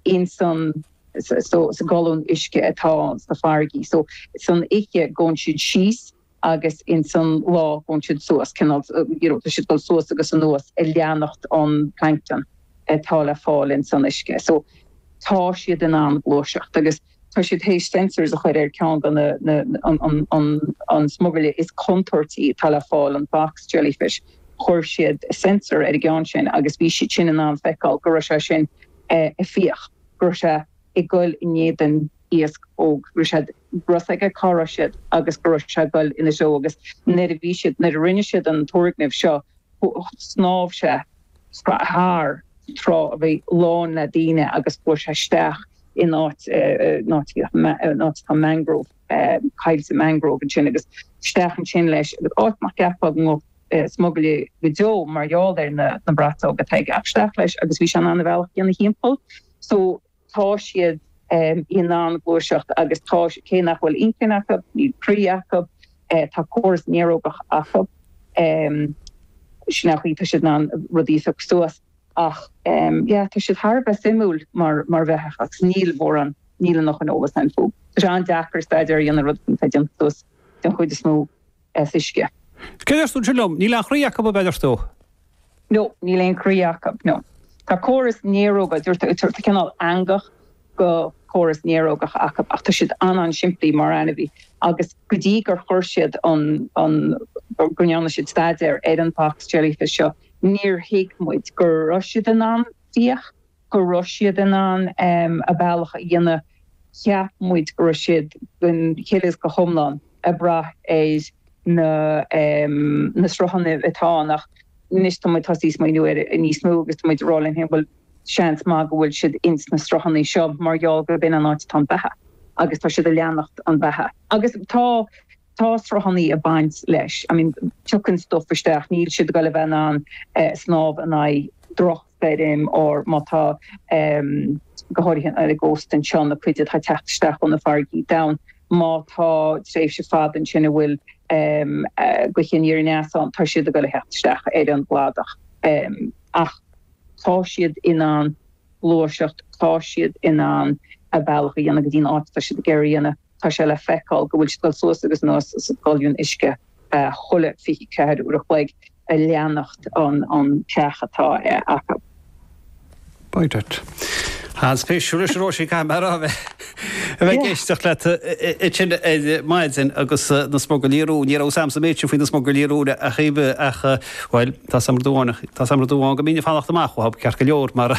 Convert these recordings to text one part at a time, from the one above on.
insan so, sa gcolún uisce atá sna farraigí so, san oiche gabhann siad síos agus insan lá gabhann siad suas, cineál you know tá siad ag dul suas agus anuas ag leanacht an plancton atá le fáil insan uisce so tá siad in ann gluaiseacht agus. tá siad théis sensors a chuir ar ceann de na an smugairle is contúirtí atá le fáil, an box jellyfish. Chuir siad sensor ar an gceann sin agus bhí siad sin in ann feiceáil go raibh sé sin ag fiach, go raibh sé ag goil in éadan iasc óg, raibh a fhios aige cá raibh siad agus go raibh sé goil ina threo agus nuair a bhí siad, nuair a rinne siad an turgnamh seo, shnámh sé. thar trá a bhí lán le daoine agus chuaigh sé isteach in áit atá mangrove coillte mangrove ansin agus isteach ansin leis agus áit nach gceapfá go ngabhfadh smugairle go deo mar gheall ar na braiteoga atá aige ach isteach leis agus bhí sé in ann a bhealach a dhéanamh thimpeall so tá siad in ann gluaiseacht agus tá, cé nach bhfuil inchinn acu, níl croí acu, tá córas néarógach acu, sin é an chaoi, tá siad in ann rudaí a phiocadh suas ach yeah tá siad thar a bheith suimiúil mar bheithíoch agus níl mórán, níl an oiread sin eolas againn fúthu. Tá sé an-deacair staidéar a dhéanamh ar rud atá déanta suas den chuid is mó. as uisce. Céard a dúirt tú liom, Níl aon chroí acu, ab ea a dúirt tú? nó Níl aon chroí acu, nó Tá córas néaróga, dúirt tú, cineál eangach de chóras néarógach acu, ach tá siad an-an-simplí mar ainmhí. Agus go dtí gur chuir siad an, an, go ndearna siad staidéar ar an box jellyfish seo, níor thuig muid go raibh siad in ann fiach, go raibh siad in ann a bealach a dhéanamh, cheap muid go raibh siad den chuid is go hiomlán ag brath ar na na sruthanna atá ann ach anois tá muid tosaí ag smaoineamh air níos mó agus tá muid ag rá linn féin bhuel seans maith go bhfuil siad ins na sruthanna seo mar gheall gur b'in an áit atá an beatha agus tá siad ag leanacht an bheatha agus tá tá sruthanna ag baint leis I mean tiocann stuif isteach níl siad ag goil a bheith in ann snámh in aghaidh droch beirim, or má tá, go háirithe ar an gcósta anseo, na cuid atá ag teacht isteach ó na farraigí domhain, má tá tréimhse fada ansin a bhfuil gaoth aniar aneas ann, tá siad ag dul a theacht isteach ar an gcladach. Ach tá siad in ann gluaiseacht, tá siad in ann a bealach a dhéanamh go dtí an áit atá siad ag iarraidh a dhéanamh. Tá sé le feiceáil go bhfuil siad ag dul suas agus anuas sa gcolún uisce. chuile 24 uair a chloig ag leanacht an chreach atá acu. By dad. An-spéisiúil a Róisín, caithfidh mé a rá, a bheith ag éisteacht leat ansin ar maidin agus na smugairlí róin, ní raibh a fhios a'msa an méid sin faoi na smugairlí róin ariamh ach, bhuel, tá a fhios a'm rud amháin go mbínn ag fanacht amach uathu, ceart go leor, mar a.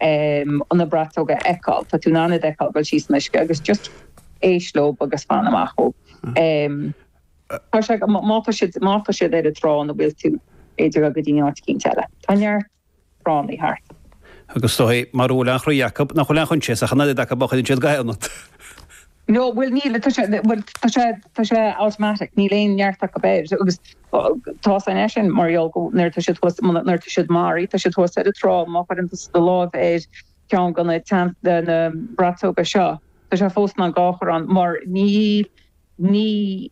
Ó na braiteoga a fheiceáil? Tá tú in ann iad a fheiceáil dul síos san uisce agus just éist leob agus fan amach uathu. Tá sé, má tá siad, má tá siad ar an trá a bhfuil tú, b'fhéidir gabh go dtí áit eicínt eile. Tá neart tránna thart. Agus is dóichí mara bhfuil aon chroí acab, nach bhfuil aon choinsias ach an oiread acab má chuireann siad ga ionat. No, bhuel, níl, tá sé, bhuel, tá sé, tá sé automatic, níl aon neart acab air agus tá 's agat é sin mar gheall go, nuair atá siad thuas, nuair atá siad maraithe, tá siad thuas ar an trá, má chuireann tusa do láimh ar cheann go na tean, de na braiteoga seo, tá sé fós in ann an ga a chur ann mar níl, ní,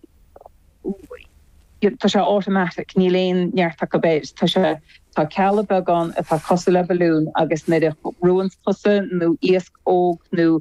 you, tá sé automatic, níl aon neart acab air, tá sé, tá cealla beaga ann atá cosúil le balloon agus nuair a bhrúanns tusa nó iasc óg nó.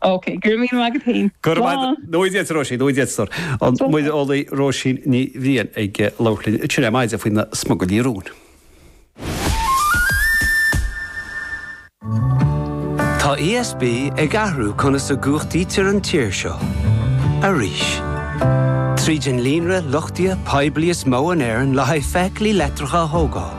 Ok, go raibh míle maith agat féin. Go raibh maith agat. Nuair a d'fhéadtar, Róisín, nuair a d'fhéadtar. An muireolaí Róisín Ní Bhriain ag labhairt linn tríd ar maidin faoi na smugairlí róin? Tá ESB ag athrú conas a gcumhachtaítear an tír seo arís. Tríd an líonra luchtaithe poiblí is mó in Éirinn le haghaidh feithiclí leictreacha a thógáil,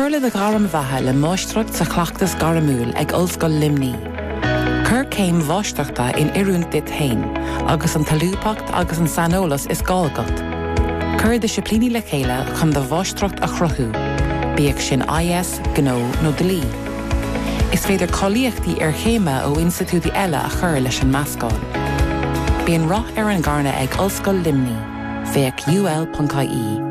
Cuir le do ghairm bheatha le Máistreacht sa Chleachtas Gairmiúil ag Ollscoil Luimní. Cuir céim Mháistreachta in oiriúint duit féin agus an tsolúbthacht agus an saineolas is gá agat. Cuir disciplíní le chéile chun do Mháistreacht a chruthú, bíodh sin IS, Gnó nó Dlí. Is féidir cáilíochtaí iarchéime ó institiúidí eile a chur leis an meascán. Bíonn rath ar an gcearnach ag Ollscoil Luimní, féach UL.ie.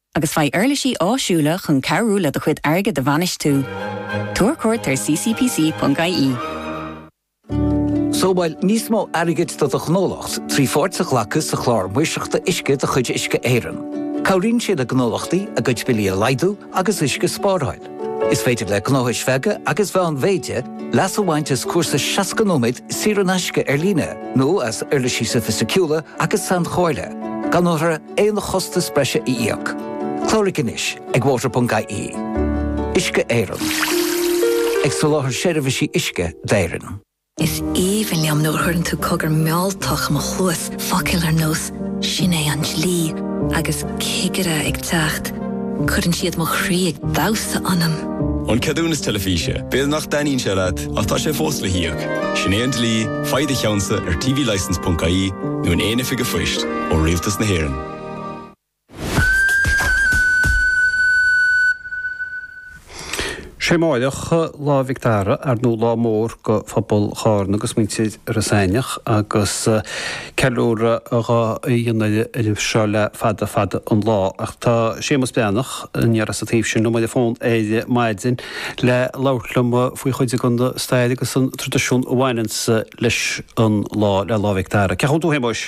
agus faigh uirlisí áisiúla chun cabhrú le do chuid airgid a bhainistiú. Tabhair cuairt ar ccpc.ie. Sábháil níos mó airgid do do ghnólacht trí pháirt a ghlacadh sa Chlár Maoirseachta Uisce de chuid Uisce Éireann. Cabhraíonn sé le gnólachtaí a gcuid billí a laghdú agus uisce a spáráil. Is féidir le gnóthais bheaga agus mheánmhéide leas a bhaint as cúrsa 60 nóiméad saor in aisce ar líne nó as uirlisí soifisticiúla agus sainchomhairle, gan orthu aon chostas breise a íoc. Cláraigh anois ag water.ie. Uisce Éireann. Ag soláthar seirbhísí uisce d'Éirinn. Is aoibhinn liom nuair a chuireann tú cogar mealltach i mo chluas, focail ar nós 'Sin é an dlí' agus 'cigire ag teacht', cuireann siad mo chroí ag damhsa ionam! An ceadúnas teilifíse, b'fhéidir nach dtaitníonn sé leat ach tá sé fós le híoc. Sin é an dlí, faigh do cheannsa ar tvlicense.ie nó in aon oifig an phoist ó Rialtas na hÉireann. Sé amáireach Lá Mhic Dara ar nó lá mór go phobal Chárna agus muintir Iorras Aithneach agus ceiliúradh dhá dhéanamh air seo le fada fada an lá ach tá Séamus Breathnach aniar as an taobh sin liom ar an bhfón ar maidin le labhairt liom faoi chuid den na stair agus an traidisiún a bhaineanns leis an lá le Lá Mhic Dara. Cén chaoi a bhfuil tú a Shéamuis?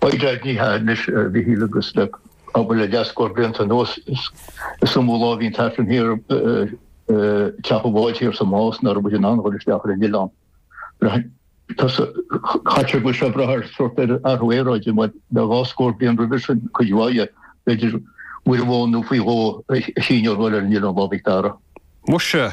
oigheardhliatha anois, a Mhichíl, agus le abair le leathscór blianta anuas, is iomaí lá a bhíonn an tAifreann thiar ag teach an bháid thiar sa Más nach raibh muid in ann a dhul isteach ar an oileán. Braitheann tusa, caitear go bhfuil sé ag brath ar sórt ar athrú aeráide, mar le dhá scór bliain roimhe sin, cuid mhaith dhe, b'fhéidir, uair amháin nó faoi dhó a chinneadh a dhul ar an oileán Lá Mhic Dara. Mhuise,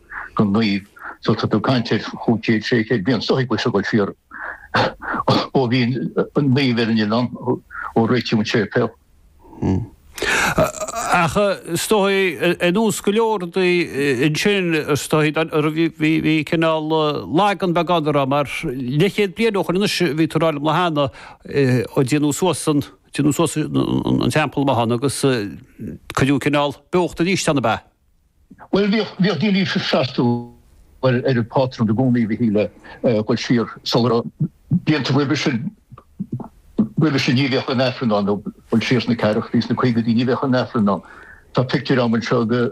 don naomh so tá tú ag caint ar chúig chéad sé chéad bliain is dóigh ag dul siar ó bhí an naomh ar an oileán ó réitíodh an séipéal. Ach is dóigh anuas go leor daoí ansin is dóigh bhí cineál lagan beagán orthu mar leithchéad bliain ó shoin anois bhí tú ag rá liom an lá cheana ó déanadh suas an déanadh suas an teampall amuigh ann agus cuireadh cineál beocht arís ann ab ea? Bhuel, bhíodh, bhíodh daoine ag freastal ar an bpátrún i gcónaí, a Mhichíl, ag dul siar sular, blianta roimhe sin, roimhe sin ní bhíodh aon Aifreann ann, nó ag dul siar sna ceathrachaidí, sna caogaidí, ní bhíodh aon Aifreann ann. Tá pictiúir a'm anseo de.